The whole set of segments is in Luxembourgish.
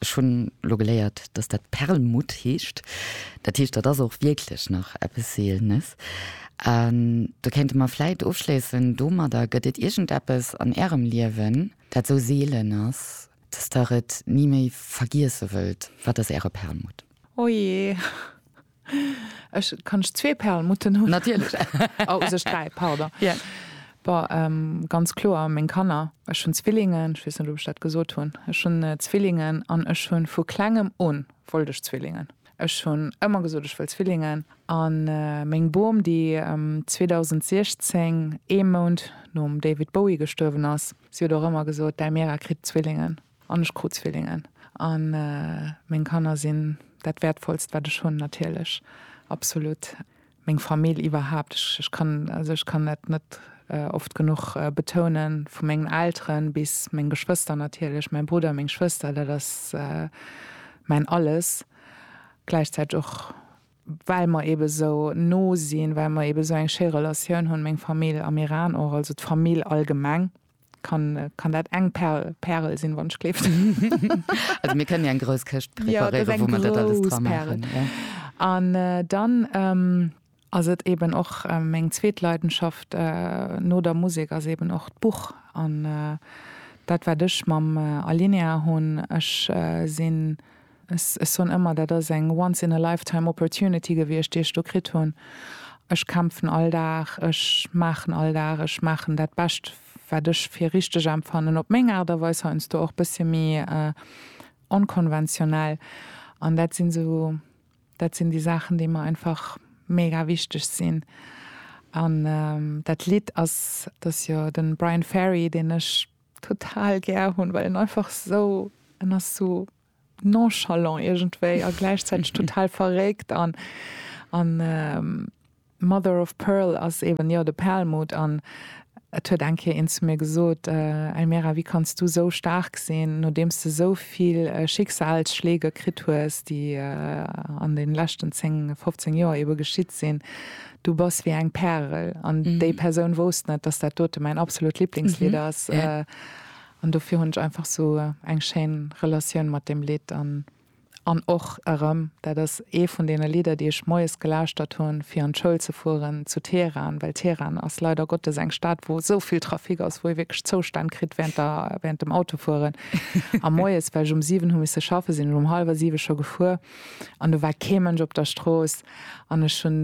Ech hunn elo geléiert, datt dat Perlmutt heescht. Dat heescht, dat ass och wierklech nach eppes Seelenes. An do kéinte mer vläit ofschléissen domadder, Gëtt et iergendeppes an Ärem Liewen, dat esou seelen ass, datt Der et ni méi vergiesse wëllt? Wat ass Äre Perlmutt? Ojee. Ech kann ech zwee Perlmutten hunn? Natierlech. Oh, also ech dräi, pardon. Ja. Bon, ähm, ganz kloer meng Kanner. Ech hunn Zwillingen, ech weess net, ob ech dat gesot hunn. Ech hunn Zwillingen an ech hunn, vu Klengem un wollt ech Zwillingen. Ech hunn ëmmer gesot, ech wëll Zwillingen. An meng Bom, déi 2016, ee Mount nom David Bowie gestuerwen ass, si huet och ëmmer gesot, Däi Mira kritt Zwillingen. An ech krut Zwillingen. A meng Kanner sinn dat Wäertvollst, wat ech hunn, natierlech, absolut. Meng Famill iwwerhaapt. Ech kann, also ech kann dat net oft genuch betounen, vu mengen Elteren bis meng Geschwëster natierlech, mäi Brudder, meng Schwëster, dat ass mäin Alles. Gläichzäiteg och, well mer eebe esou no sinn, well mer eebe esou eng schéi Relatioun hunn, meng Famill am Iran och, also d'Famill allgemeng. kann, kann dat eng Perl, Pärel sinn, wann ech kleeft. also mir kënnen ja eng grouss Këscht preparéieren, ja, wou man dat alles dra maachen. Ja. An äh, dann. Ähm, ass et eben och äh, meng zweet Leidenschaft äh, no der Musik ass eben och d'Buch an äh, dat wat ech mam äh, Alinea hunn. Ech äh, sinn Ech soen ëmmer, dat ass eng once in a lifetime opportunity gewiescht, déi ech do kritt hunn. Ech kämpfen all Dag, ech maachen all Dag, ech maachen dat Bescht, wat ech fir richteg empfannen, op meng Aart a Weis, heiansdo och e bëssche méi onkonventionell. An dat sinn esou, dat sinn déi Saachen, déi mer einfach mega wichteg sinn. An dat Lidd ass, dat ass jo de Bryan Ferry, deen ech total gär hunn, well en einfach esou, en ass esou nonchalant iergendwéi a gläichzäiteg total verréckt an an mother of pearl ass eben jo de Perlmutt an et huet eng Kéier een zu mir gesot, Elmira wéi kanns du esou staark sinn nodeems de esou vill Schicksalsschleege kritt hues déi an den leschten 10, 15 Joer eben geschitt sinn, du bass wéi eng Pärel an déi Persoun wousst net dass dat dote mäin absolut Lieblingslidd ass. An dofir hunn ech einfach sou eng schéin Relatioun mat deem Lidd. An an och erëm, dat ass ee vun deene Lidder, déi ech moies gelauschtert hunn, fir an d'Schoul ze fueren zu Teheran, well Teheran ass leider Gottes eng Stad, wou esou vill Trafic ass, wou ee wierklech Zoustänn kritt während der, während dem Autofueren. A moies, well ech um siwen hu misse schaffen, sinn ech um hallwer siwe scho gefuer an do war kee Mënsch op der Strooss an ech hunn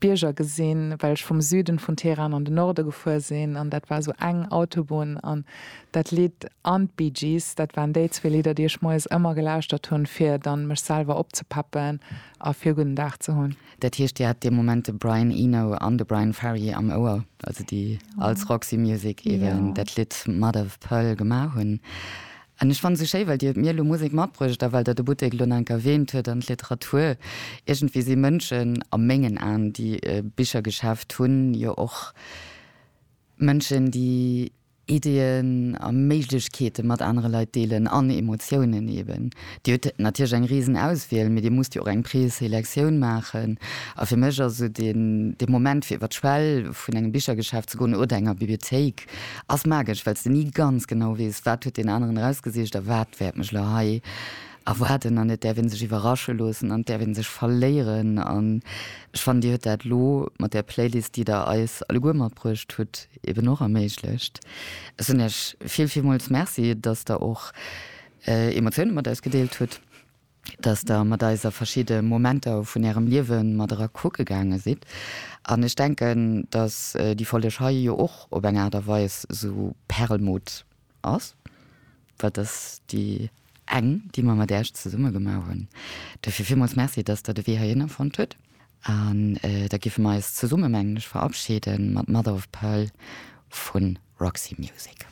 Bierger gesinn, well ech vum Süden vun Teheran an de Norde gefuer sinn, an dat war esou eng Autobunn, an dat Lidd an d'Bee Gees, dat waren déi zwee Lidder, déi ech moies ëmmer gelauschtert hunn, fir dann mech selwer opzepeppen a fir e gudden Dag ze hunn. Dat heescht, Dir hat dee Moment de Brian Eno an de Bryan Ferry am Ouer, also déi als Roxy Music eben dat Lidd Mother of Pearl gemaach hunn. An ech fannen esou schéi, well Dir mir elo Musek matbruecht a well Der de Buttek elo nach eng Kéier erwähnt huet an d'Literatur. Iergendwéi si Mënschen, a mengen Aen, déi e Bichergeschäft hunn, jo och Mënschen, déi Ideeën a Méiglechkeete mat anere Leit deelen, an Emotiounen eben. Dir hutt natierlech eng risen Auswiel, mee Dir musst jo och eng Preselectioun maachen. A fir mech ass esou dee Moment, fir iwwer d'Schwell vun engem Bichergeschäft ze goen oder enger Bibliothéik, Ass magesch, wells de ni ganz genau weess, wat huet deen aneren erausgesicht a wat wäert mech elo hei erwaarden. An et däerf een sech iwwerrasche loossen an et däerf een sech verléieren. An ech fannen, Dir hutt dat elo mat där Playlist, déi Der eis alleguer matbruecht hutt, eben och erméiglecht. Ech soen Iech vill, villmools Merci, dass Der och Emotioune mat eis gedeelt hutt. dass Der mat eis a verschidde Momenter vun Ärem Liewe mat era kucke gaange sidd. An ech denken, dass déi Folleg hei jo och op eng Aart a Weis esou Perlmutt ass, well et ass déi eng, déi mer mat Äech zesumme gemaach hunn. Duerfir villmools Merci, dass Der de Wee heihinner fonnt hutt. An da giffe mer eis zesumme, mengen ech, verabschiede mat Mother of Pearl vu Roxy Music.